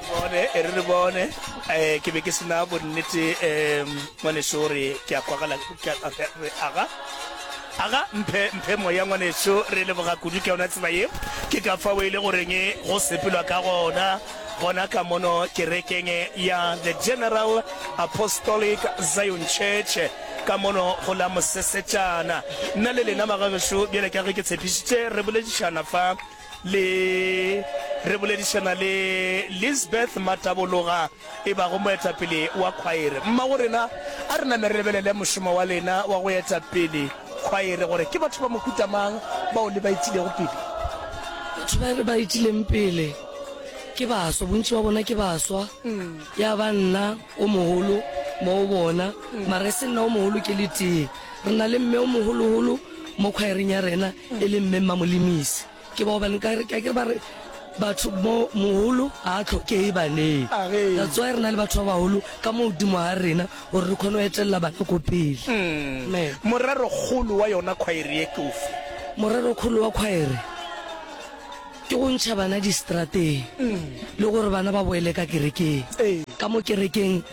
bone e re re bone um ke be ke sena bonnete um ngwaneso re ke a kwagala aga aga mphe mphe moya ngwaneso re leboga kudu ke yona tsela ye ke ka fa o e le goreng go sepelwa ka gona gona ka mono kerekeng ya the general apostolic zion church ka mono go la mosesetšana nna le lena magageso bjale ka ge ke tshepišitše re boledišana fa le re boledišana le Lisbeth Matabologa e bago moetapele wa khwaere. Mmago rena, a re name re lebelele mošomo wa lena wa go eta pele khwaere gore ke batho ba mohuta mang bao le ba itilego pele. Batho ba re ba itileng pele ke baswa, bontši ba bona ke baswa, ya ba nna o mogolo mo go bona, mara e se nna o mogolo ke le tee. Re na le mme o mogoloholo. Mo khwaereng ya rena e le Mme Mmamolimisi. Ke bao ba nka ke akere ba re batho mo moholo ga a tlhokee baneng. That's why re na le batho ba baholo ka mo godimo ga rena gore re kgone go etelela bana ko pele. Me. Morero kgolo wa yona khwaere ye ke ofe? Morero kgolo wa khwaere ke go ntšha bana distrateng le gore bana ba boele ka kerekeng. Ee. Ka mo kerekeng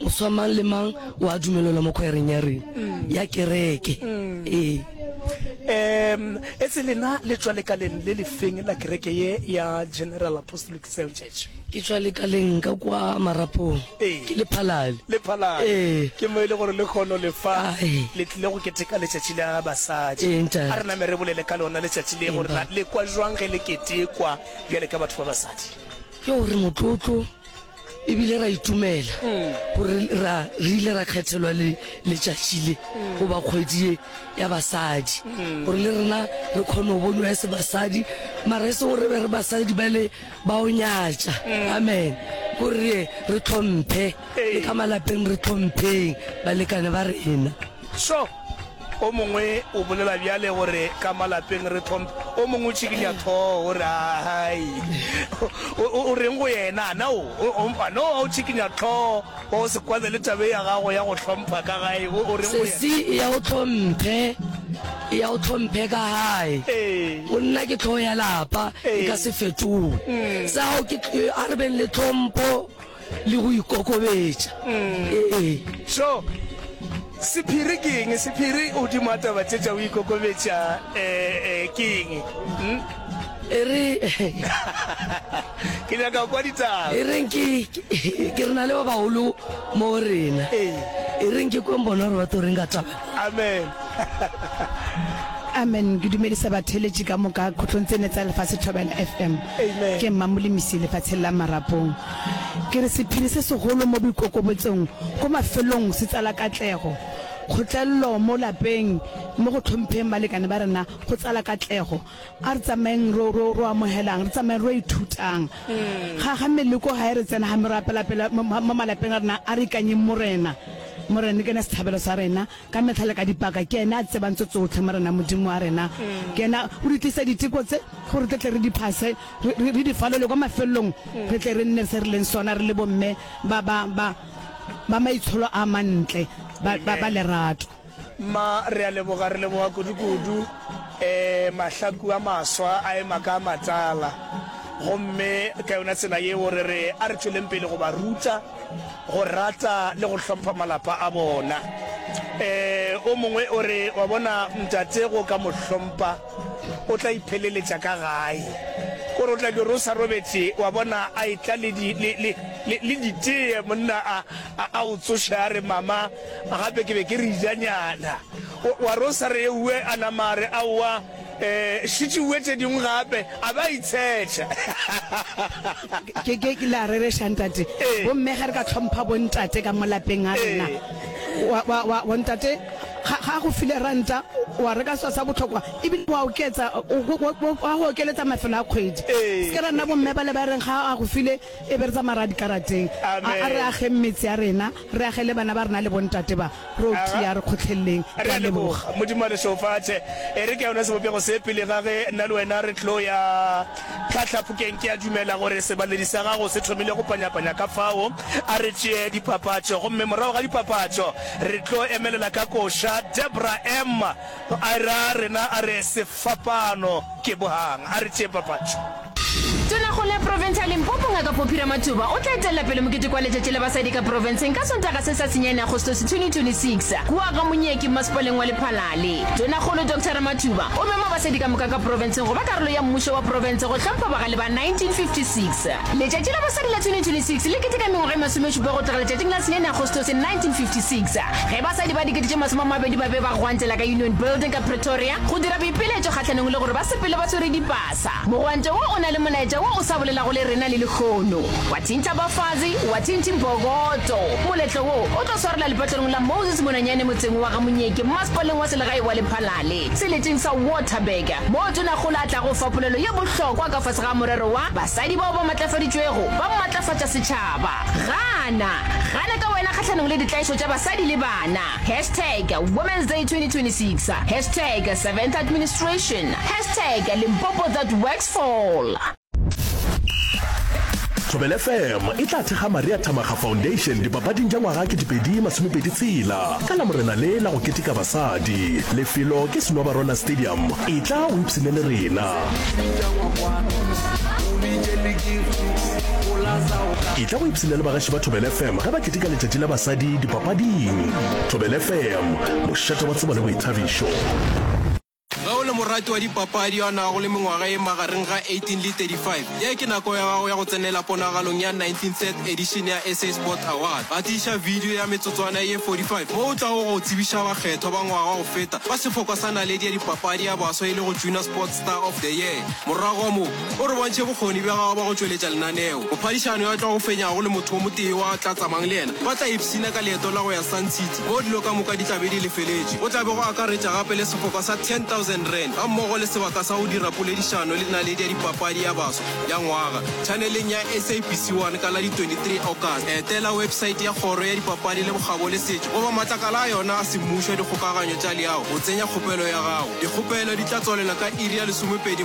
Moswa mang le mang o a dumelelwa mo khwaereng ya rena ya kereke. Ee. Em, etse lena le tšwa lekaleng le lefeng la kereke ye ya General Apostolic Cell Church? Ke tšwa lekaleng ka kwa Marapong. Ee. Ke lephalale. Le phalale. Ee. Ke mo e le gore le kgono le fa Ah, ee. le tlile go keteka letšatši la basadi. Ee, ntate. A re name re bolele ka lona letšatši le gore na Empa- le kwa jwang ge le ketekwa bjale ka batho ba basadi. Ke gore motlotlo e bile ra itumela gore ra re ile ra kgethelwa le letšatši le goba kgwedi ye ya basadi gore le rena re kgone go bonwa ya se basadi mara e se gore be re basadi ba le ba o nyatša amen gore re tlhomphe le ka malapeng re tlhompheng balekane ba rena sure O mongwe o bolela bjale gore ka malapeng re tlhomphe. O mongwe o tšhikinya thoho o re, Ahai, o reng go yena? Ana o mpha? No, o tšhikinya tlhoho wa go se kwane le tabe ya gago ya go tlhompha ka gae. O reng go yena? Sesi, eya o tlhomphe, eya o tlhomphe ka gae. Go nna ke tlhogo ya lapa, e ka se fetoge. Sa gago ke, a re beng le tlhompho. le go ikokobetša ee so sephiri ke eng sephiri o dimo a taba tse tša o ikokobetša um ke eng hmm? e re ke nyaka kwa ditaba e reng ke ke re na le ba bagolo mo rena ee. e reng ke kweng bona gore ba to reng ka taba amen amen ke dumedisa batheletši ka moka kgotlong tsene tsa lefatshe thobela fm ke mmamolemisi lefatsheng la marapong Ke re sephiri se segolo mo boikokobotsong ko mafelong se tsala katlego. Kgotlelelo mo lapeng mo go tlhompheng balekane ba rena go tsala katlego. A re tsamaeng ro, ro, ro amogelang, re tsamaeng ro ithutang. Ga, ga meleko ga e re tsena, ga me ro apela pele mo, mo, mo malapeng a rena, a re ikanyeng Morena. Morena ke ene sethabelo sa rena ka metlha le ka dipaka. Ke ene a tsebang tso tsotlhe, Morena Modimo wa rena. Ke ene a, o di tlisa diteko tse gore tle tle re di phase. re, re, re di falole kwa mafelelong re tle re nne se re leng sona re le bomme ba ba ba ba maitsholo a mantle ba, ba, ba lerato mma re a leboga re leboga kudukudu um eh, mahlaku a maswa a ema ka matsala gomme ka yona tsela yeo re re a re tšweleng pele go ba ruta go rata le go hlompha malapa a bona um o mongwe o re wa bona ntate go ka mo hlompha O tla ipheleletša ka gae. Gore o tla di rosa robetše, wa bona, a etla le, di, le, le, le, le ditee, monna a, a, a o tsoše a re, Mama, gape ke be ke re ijanyana. O, wa rosa re eue, a nama a re, Aowa, e, šetše eue tše dingwe gape, a be a itshetša. Ke, ke, ke, le a rereša, ntate. Ee. Gomme ge re ka hlompha bontate ka mo lapeng a rena, Ee. Wa, wa, wa, bontate, Ga, ga a go file ranta, wa reka selo sa bohlokwa, ebile wa oketsa, o, o, o, wa go okeletsa mafelo a kgwedi. Ee. Se ke ra nna bomme bale ba reng ga a go file, e be re tsamaya re ya dikarateng. A, Amen. a re ageng metse ya rena, re age le bana ba rena le bontate ba, re o Aga. tia, re kgotlheleleng. Re Re a a leboga. leboga. Modimo a le šeofatše. E re ke yona sebopego se pele ga ge nna le wena re tlo ya. Hlahla phokeng, ke a dumela gore sebaledi sa gago se thomile go panyapanya. Ka fao a re tšee dipapatšo, gomme morago ga dipapatšo re tlo emelela ka koša. Debra, Emma a e ra rena, a re, Sefapano ke bohang. A re tšee papatšo. Tonakgolo ya Profense ya Limpopo, Ngaka Poppy Ramathuba, o tla etelela pele moketeko wa Letšatši la Basadi ka Profenseng ka Sontaga se sa senyane, Agostose 2026, kua ga Monyeki, Mmasepaleng wa Lephalale. Tonakgolo Doctor Ramathuba o mema basadi ka moka ka Profense Go ba karolo ya mmušo wa profense go hlompha bagale ba 1956. Letšatši la Basadi la 2026 le keteka mengwaga e masomešupa go tloga letšatšing la senyane Agostose 1956 ge basadi ba dikete tše masome a mabedi ba be ba gwantela ka Union Building ka Pretoria go dira boipiletšo kgahlanong le gore ba sepele ba swere dipasa. Mogwanto wo o na le molaetša wo o sa bolelago le rena le lehono. Wa thintha bafazi, wa thinthing bogoto. Moletlo wo o tlo swarela lepatlelong la Moses Monanyane motseng wa ga Monyeke mmasepaleng wa selegae wa Lephalale. Seleteng sa Waterberger, moo Tonagola a tlago fa polelo ye bohlokwa ka fase ga morero wa Basadi bao ba Matlafaditšwego ba Matlafatša Setšhaba. Gana! Gana ka wena kgahlanong le ditlaišo tša basadi le bana. Hashtag Women's Day 2026 Hashtag Seventh Administration Hashtag Limpopo That Works Fall. Thobela FM e tla thekga Maria Thamakga Foundation dipapading tša ngwaga ke dipedi masomepedi tshela ka la morena le la go keteka basadi. Lefelo ke Senobarona Stadium. E tla o ipshine le rena. E tla go ipshine le bagaši ba Thobela FM ge ba keteka letšatši la basadi dipapading. Thobela FM, mošate wa tsebo le boithabišo. Ge o le morati wa dipapadi yo a nago le mengwaga e magareng ga 18 le 35, ye ke nako ya gago ya go tsenela ponagalong ya 19th edition ya SA Sport Awards. Gatiša video ya metsotswana ye 45 mo o tlago go tsebiša bakgethwa ba ngwaga go feta ba sefokwa sa naledi ya dipapadi ya baswa e lego Junior Sports Star of the Year. Morago mo. O re bontšhe bokgoni bja gago ba go tšweletša lenaneo. Mophadišano yo a tlago fenyago le motho o motee yo a tla tsamayang le yena ba tla ipshina ka leeto la go ya Sun City moo dilo ka moka di tla be di lefeletšwe. Go tla be go akaretša gape le sefoka sa R10,000 gammogo le sebaka sa go dira poledišano le naledi ya dipapadi ya baswa ya ngwaga tšhaneleng ya SABC 1 ka la di 23 Augusta. Etela wepsaete ya Kgoro ya Dipapadi le Bokgabo le Setšo goba matlakala a yona a semmušo a dikgokaganyo tša leago go tsenya kgopelo ya gago. Dikgopelo di tla tswalela ka iri ya lesomepedi